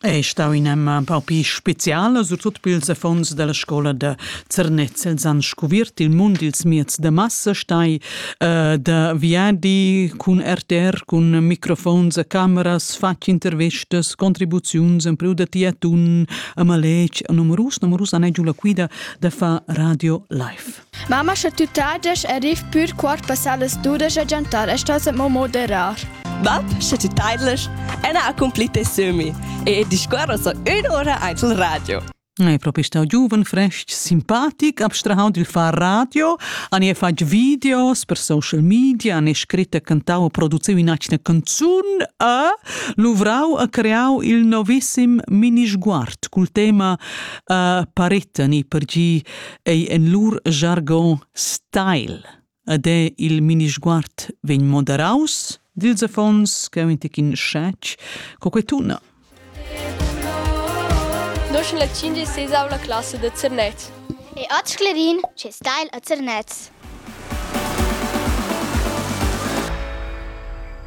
Ei stau in emma paupi speciala su tut pils affons dalla scola da Zernez. Els han scuvirt il mund dils mieds da massa, stai uh, da viadi cun RTR, cun microfons a cameras, fatg intervistas, contribuziuns empriu da tiatun, a maletg, a numerus, numerus han giu la quida da far radio live. Mamma sche tü tagiasch e riv pür quart passà las dudesch a giantar e stas mo moderar. Bab, sche tü taidlasch, ena accompli tes sömi e discuorra so ün'ura aint il radio. È propi stau giuven, frestg, simpatic, abstrahau dil far radio, han e fatg videos per social media, han e scritto e cantau e produziu in'atgna canzun e luvrau e creau il novissim mini sguard cul tema uh, paretta ni per gi ei en lur jargon style ed è il minisguard vegn moderaus dils affons che ein in scetg co quei tuna. Nosch la 56 la classe de Zernet. E oggi Clerin, ce style a Zernez.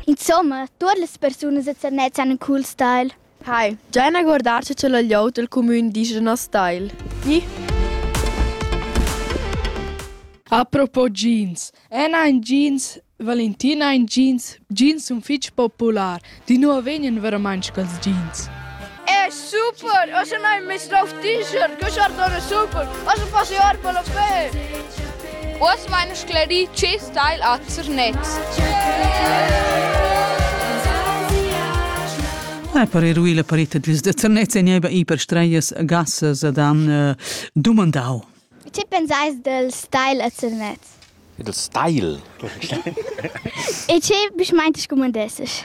Insomma, tutte le persone de Zernez hanno un cool style. Hai, già ina guardatscha cha la glieud dal cumün disch a nos tagl. Gi? Apropos jeans. El ha in jeans, Valentin ha in jeans, jeans sun fich popular. Di nu vegnan veramaing quels jeans. È super! Ossa n'hain meis drov t-shirt, que sar dona super! Ossa passi or per la fe! Uoss vain sclerì tschess tagl a Zernez. Ai per eruir la parita dils da Zernez e nieba i per streias gassas ad han uh, dumandau. Ti pensais del style a Zernez? Il style. e ce bisch meinte scumandesses?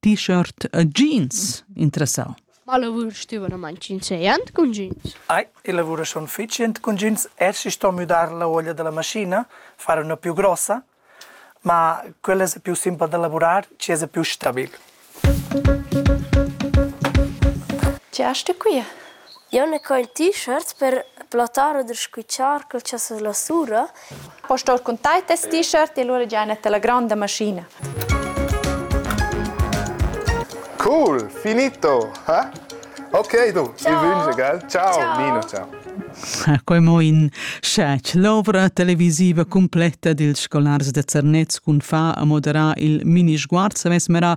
t-shirt e jeans interessau. Ma lavur stüvadamaing chinzeiant cun jeans. Ai, i lavura schon fitschient cun jeans. Eci sto müdar la uoglia da la maschina, far üna più grossa, ma quella es più simpel da lavurar, ci es più stabil. Chi est qui? Jeu na co il t-shirt per plattar oder squitschar quel cha s'as lasura. Po star cun tai tes t-shirt e lura già net la gronda maschina. Cool, finito. Eh? Ok, du, ciao. vi vünge gal. Ciao, ciao. Nino, ciao. Quei mo in scetg. L'ovra televisiva completa dils scolars de Zernez cun fa a moderar il mini sguard savess mera